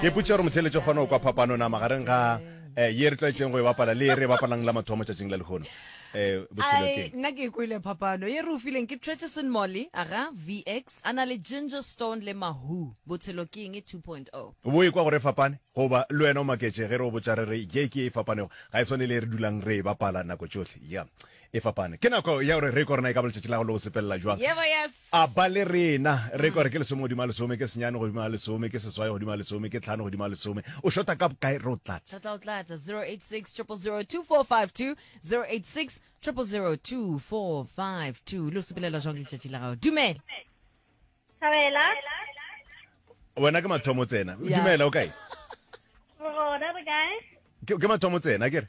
ke putša gore motheletše kgone go kwa phapano na magareng ga eh, ye re tlwaetseng go e bapala le e re e bapalang la mathomo tšatšing la lehono um botshelokeng nna ke e kwele phapano ye re o fileng ke trecheson molly aga vx a na le ginger stone le mahu botshelo ke eng e 2.0 bo e kwa gore e fapane goba le wena o maketše ge re o botša re re ye ke e fapanego ga e swane le e re dulang re e bapala nako tšohle ya e fapane. Ke nako ya gore re ko rena e ka ba letšatši la go le go sepelela jwang. Yebo, yes. A ba le rena. Re ko re ke lesome godimo a lesome, ke senyane godimo a lesome, ke seswai godimo a lesome, ke tlhano godimo a lesome. O shota ka bokae re o tlatse. Re tla o tlatsa 086 000 2452 086 000 2452. Lo sepelela jwang letšatši la gago? Dumela. Thabela. Wena ke mathomo tsena. Yeah. Dumela o kae? Rona re kae? Ke ke mathomo tsena ke re.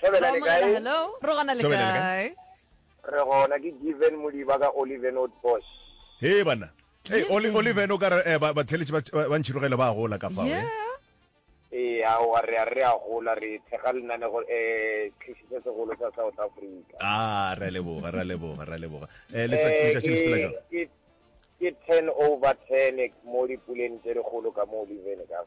Thobela le kae? Hello, re gona le kae? Re gona ke Given Modiba ka Oliven Old Bosch. He bana. Hey, Oli Oliven o ka re eh, ba theletše ba ntšhirogele ba gola ka fa. Yeah. Ee, a wa re a re a gola re thega lenanego eh tlhisiso segolo sa South Africa. Ah, re leboga, re leboga, re leboga. Eh, le sa le sa tsela jang? Ke ke 10 over 10 mo dipuleng tse dikgolo ka mo Oliven ka.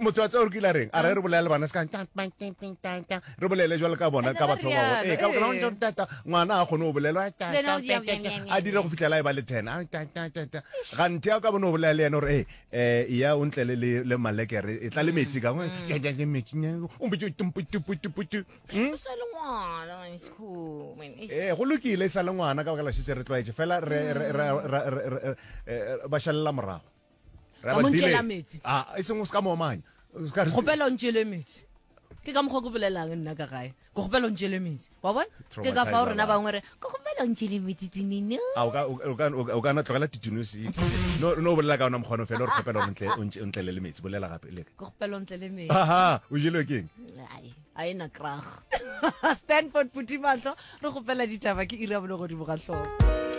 motswatse gore ke ile reng a re re bolela le bana se re bolele jalo ka bona ka batho ba bangwe ee ka bona go tata ngwana a kgone go bolela a dire go fitlhela e ba le ten ga nthe ya ka bona o bolela le ene gore ee ya o ntle le le malekere e tla le metsi ka ngwe ya ja le metsi ne o mbe tumpu tumpu tumpu tu sa le ngwana wa school ee go lokile sa le ngwana ka baka la shetse re tlwaetse fela re ba shalela morago ka mo ntšela metsi ah, e seng o se ka moomanya kgopela o ntšele metsi ke ka mokgwa ko bolelang nna ka gae ke kgopela o ntšele metsi wa bona ke ka fao rona bangwe re ke kgopela o ntšele metsi tinino ah, o kana tlogela titinosi no o bolela ka ona mokgono fela o re kgopela o ntlele le metsi bolela gape le ke kgopela o ntlele metsi aha o jelwe keng a e na krag stanford putimatlo re kgopela ditaba ke ira bone godimo ga tlhogo